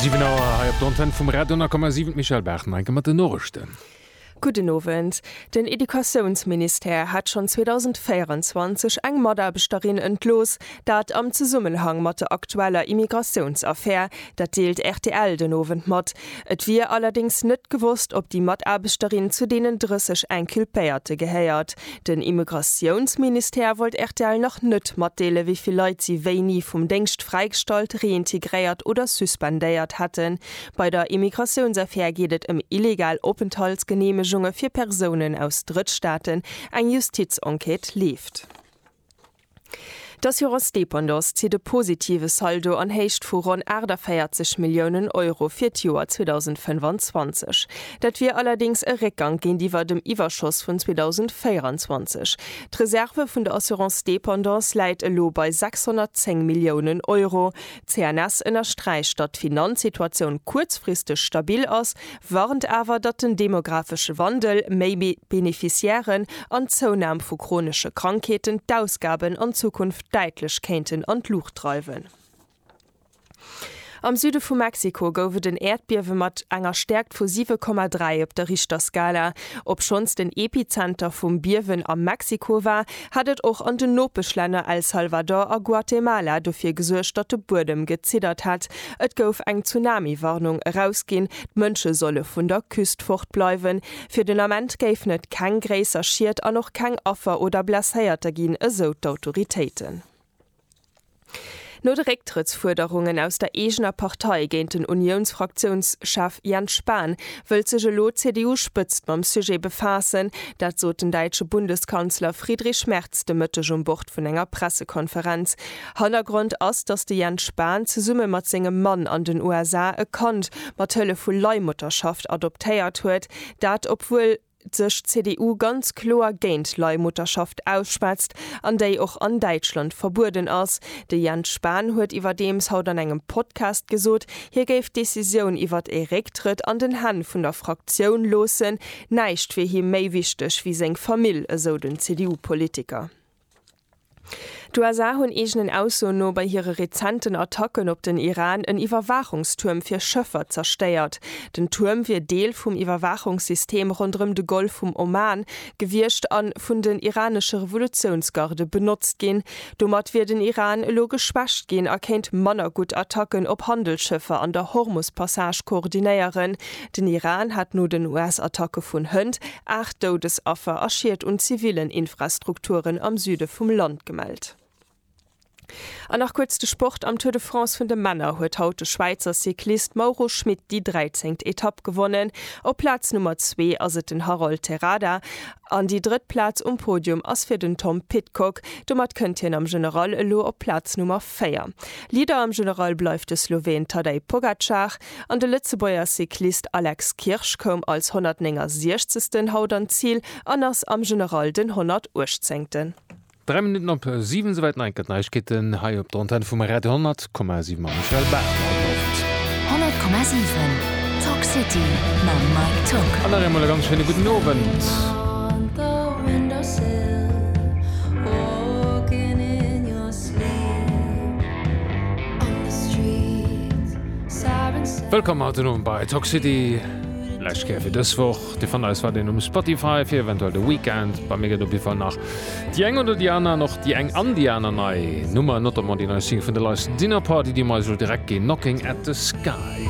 Siwen Auer hei op der Antenn vum Radio 10,7, d'Michèle Bachmann mat den Norichten. Gudden Owend. Den Educatiounsministère hat schonn 2024 eng Mataarbechterin entlooss, dat am Zesummenhang mat der aktueller Immigratiounsaffär. Dat deelt rtl den Owend mat. Et wier allerdéngs net gewosst, ob déi Mataarbechterin zu deenen 30 Inculpéierte gehéiert. Den Immigratiounsministère wollt rtl nach net matdeele wéi vill Leit si wéini vum Déngscht fräigestallt, reintegréiert oder suspendéiert hätten. Bei der Immigratiounsaffär geet et ëm illegal Openthaltsgeneemegunge fir Persounen aus Drëttstaaten. Eng Justizenquête leeft. D'Assurance Dépendance zitt e positive Saldo an Héicht vu ronn 48 Milliounen Euro fir d'Joer 2025. Dat wier allerdéngs e Réckgank géintiwwer dem Iwwerschoss vun 2024. D'Reserve vun der Assurance Dépendance läit elo bei 610 Milliounen Euro. D'CNS ënnersträicht, datt d'Finanzsituatioun kuerzfristeg stabil ass, warnt awer, datt den demographesche Wandel, méi Beneficiairen an d'Zounahm vu chronesche Krankheeten d'Ausgaben an Zukunft däitlech kéinten an d'Luucht dreiwen. Am Süde vu Mexiko gouf et en Äerdbiewe mat enger Stäerkt vu 7,3 op der Richterskala. Obschonns den Epizenter vum Biewen a Mexiko war, hat et och an den Nopeschlänner El Salvador a Guatemala dofir gesuergt, datt de Buedem geziddert hat Et gouf eng Tsunami-Warnung erausginn, d'Mënsche solle vun der Küst fort bleiwen. Fir den Ament géifen et keng gréisser Schied an och keng Affer oder Blesséierter ginn, esou d'Autoritéiten. No de Récktrëttsfuerderungen aus der eegener Partei géint den Uniouns-Fraktiounschef Jens Spahn, wëllt sech elo d'CDU-Spëtzt mam Sujet befaassen. Dat sot den däitsche Bundeskanzler Friedrich Merz de Mëtteg um Bord vun enger Pressekonferenz. Hannergrond ass, datt de Jens Spahn zesumme mat sengem Mann an den USA e Kand mat Hëllef vu Leihmutterschaft adoptéiert huet, dat obwuel sech d'CDU ganz kloer géint Leihmutterschaft ausschwätzt an déi och an Däitschland verbueden ass. De Jens Spahn huet iwwerdeems haut an engem Podcast gesot, hie géif d'Decisioun iwwert e Récktrëtt an den Hänn vun der Fraktioun loossen, näischt wier him méi wichteg wéi seng Famill, esou den CDU-Politiker. D'USA hunn eegenen Aussoen no bei hire rezenten Attacken op den Iran en Iwwerwaachungstuerm fir Schëffer zerstéiert. Den Tuerm wier Deel vum Iwwerwaachungssystem ronderëm de Golf vum Oman gewiescht a vun den iranesche Revolutiounsgarde benotzt ginn. Domat wier den Iran elo geschwächt ginn a kéint manner gutt Attacken op Handelsschëffer an der Hormus-Passage koordinéieren. Den Iran hat no den US-Attacke vun hënt Aacht Doudesaffer a Schied un zivillen Infrastrukturen am Süde vum Land gemellt. An nach kuerz de Sport, Am Tour de France vun de Männer huet haut de Schwäizer Cyclist Mauro Schmit déi 13. Etapp gewonnen. Op Plaz Nummer zwee ass et den Harold Terrada an déi drëtt Plaz um Podium ass fir den Tom Pidcock. Domat kënnt hien am General elo op Plaz Nummer véier. Leader am General bleift de Sloween Tadej Pogacar. An de Lëtzebuerger Cyclist Alex Kirsch koum als 169. haut an d'Zil an ass am General den 118. Dräi Minutten op siwen, souwäit d'Neinkert Neiegkeeten hei op der Antenn vum Radio 10,7 mam Michel Bachmann. Gutt Owend. 100,7 Talk City mam Mike Tock. An nach eemol e ganz schéine gudden Owend. Wëllkomm haut den Owend bei Toxcity. Lescht Kéier fir dës Woch. Dir fannt eis weiderhin um Spotify fir eventuell de Weekend. Bei mir gëtt op jidde Fall nach déi eng oder déi aner, an och déi eng an déi aner nei Nummer, notamment déi nei Single vun The License, Dinner Party, déi mer eis elo direkt ginn, Knocking at the Sky.